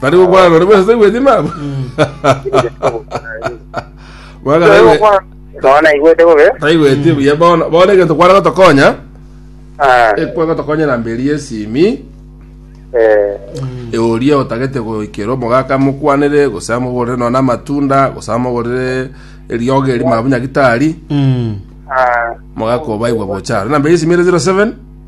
Tari gokwana nonde bwese tari gweti mama. Mwana tari gwe- nona igwete bobe tari gweti buya bono bono egento kwana gotokonya Ah, ekwa gotokonya na mberi yesimi eh, euria otagete goikera omogaka mokwanere gose amogorere nona amatunda gose amogorere eriogo eri mabunya gitari Mm. ah, mogaka obaigwa bochara na mberi yesimi ere 07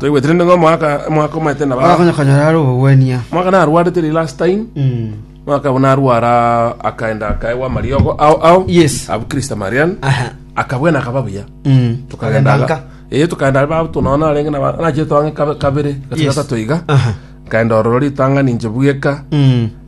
Toigwetire ning'o omwaka omwaka omanyete na ba bakonya konyora are obogwenia mwaka narwarete ri last time Mm. mwaka abo narwara akaenda akaegwa amariogo ao ao Yes. abu Krista Marian Aha. akabwena akaba buya Mm. tukagenda Agenda nka. ee tukagenda babu tunaona arenge na nache twange kabe- kabere Yes. gatatu iga Aha. kaenda ororo ritanga ninche bweka Mm.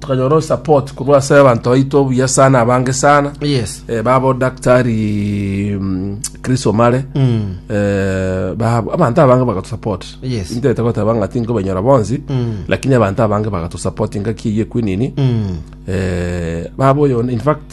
tukanyora support korwa ase abanto baito obuya sana abange sana yes eh, babo daktari mm, chris omare mm. eh, babo abanto abange bagatusupport Yes. intete goteba ng'ati nkobanyora bonsi Mm. lakini abanto abange bagatusupport ngaki eye kwenini mm. eh, babo oyo in fact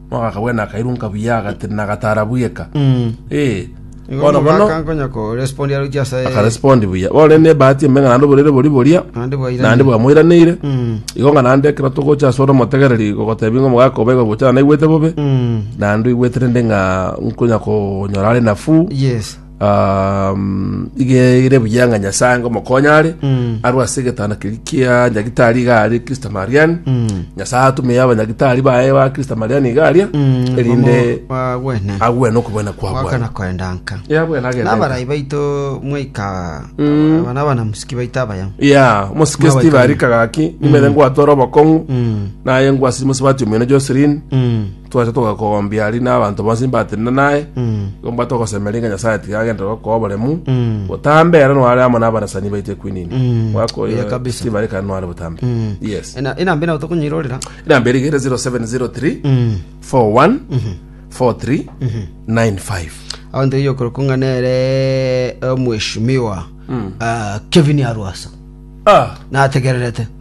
Agakabua na akairunka buya, agati, Nagatara bweka. Eh, Igo bono bono omogaka nkonya ko respond aroche ase akarespondi buya. Bono rende nebahati emenga naende oborere bori boria, naende bwaira. naende bwamoiraneire. Mm. Igo ng'a naende ekero togocha ase ore omotegereri gogotebi ng'a omogaka oba egogocha naende aigwete bobe, Mm. naende oigwete rende ng'a nkonya konyora are nafuu. Yes. um, igere buya ng'a nyasae ngo mokonye are Mm. arwe ase egetanda keri kia nyagitari iga aria kristo mariani Mm. nyasae atume abanyagitari baye ba kristo mariani iga aria Mm, erinde bomo bagwene agwene okobwena kwa mwakana bwana koendanka yabwena agende nabarai baito mwaika abana abana musiki baito abaya ya mosike Mwabaika steve ari kagaki nimere ngwatwara obokong'u Mm, naye ngwasiri mosibati omwene joselin mm, Twacha togakombia aria na abanto bonsi mbatenena naye, igo mbwate ogosemeria ng'a Nyasaye tiga agentera gokoa oboremu, botambe ere noare amo nabarasani baito ekwinini. Mwaka oyo Oya kabisa. Steve are kare noare botambe. Yes. Ena- enamba ena tokonyiroorera Inamba eri igere 0703 41 43 95. abanto iye okorokwa ng'a nere omweshimiwa ah, kevin arwasa Ah, nategererete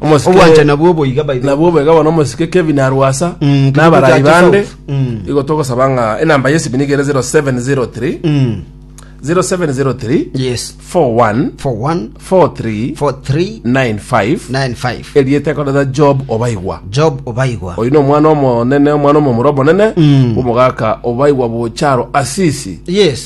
Omosike- Obwanchani nabwo boiga by the way. nabwo boiga bono omosike kevin arwasa Mm, kibuga nabarai kya bande Kisaufu. Mm. igo togosaba ng'a enamba yesi binigere 0703 Mm. 0703 Yes. 41 For one, 43 for three, 95 nine, five. erieta ekoreta job obaigwa Job obaigwa. oyu nomwana omonene omwana omomura omonene Mm. omogaka obaigwa bocharo asisi Yes.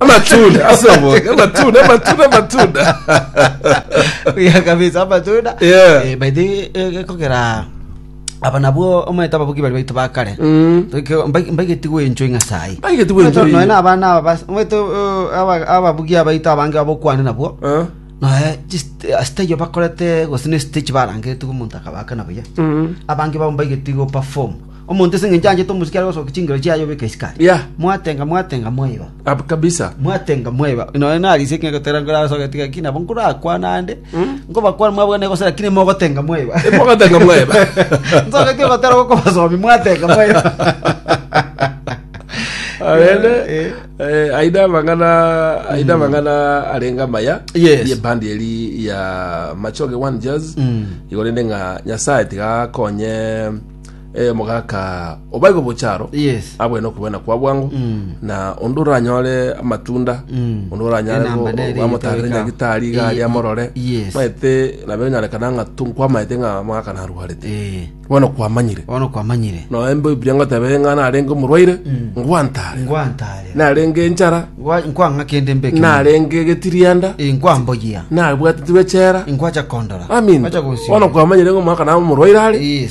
amatunda ase oboke amatunda amatunda amatunda Buya kabisa amatunda Yeah. Eh, by the way, eh, ekogera aba nabwo omanyete ababuki bari baitu bakare Mm. Toike- mbai- mbaigeti gwenchwa ing'asai Mbaigeti gwenchwa noe ing'a- na abana aba bas- omanyete eh, aba- ababuki abaito abange abokwane nabwo Ah, noe stage bakorete gose ne stage barangete omonto akabakana buya mm. abange bao mbaigeti go perform Omonto ase engencho anchete omosike are gosokia chingero chiaye obeka esukari. Yeah. Mwatenga mwatenga mwaiba. Ab kabisa. Mwatenga mwaiba. Nonya narisi ekero gotera ngora ase ogetiga ki nabo nkorakwana ande. Nkobakwana mwabwene gose lakini mogotenga mwaiba. Mogotenga mwaiba. Nsogetie gotera gokobasomi mwatenga mwaiba. Arende Eh. eh, aida amang'ana aida amang'ana arenga amaya Yes. ye bandi eri ya Machoge One Jazz Mm. igorende ng'a Nyasaye tiga akonye Eh, mogaka obaigo bocharo Yes. abwene okobena kwa bwango na onde oranyore amatunda onde oranyare Enamba nere amotare yetaweka. nyagitari Eh, gari amorore yes. maete nabe onyarekana ng'a tunkwamaete ng'a mogaka narwarete Eh, bono kwamanyire bono kwamanyire noembe obiria ngotebe ng'a narenge omorwaire ngwantare ngwantare narenge enchara Gwa- Nkwang'a kende mbe ekemo. narenge egetirianda, Eh, Nkwamboyia. nabwatitigwe echera. Nkwacha kondora. Amin. Kwacha gosio. Bono kwamanyire ng'a omwaka nabo omorwaire are, Yes.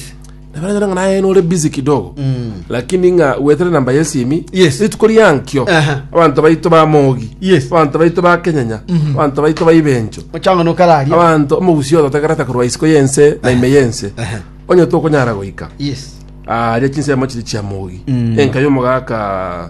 nabaranyora ng'a naye nore busy kidogo. Mm. Lakini ng'a wetere namba yesimi, Yes. rituko riankio, Aha. abanto baito ba Mogi, Yes. abanto baito ba Kenyanya, abanto baito ba Ibencho, Ochanga nokararia. abanto omogusio ototegerete korwa isiko yense na ime yense, Aha. onye tokonyara goika. Yes. aria chinsemo chiri chia mogi Mm. enka yomogaka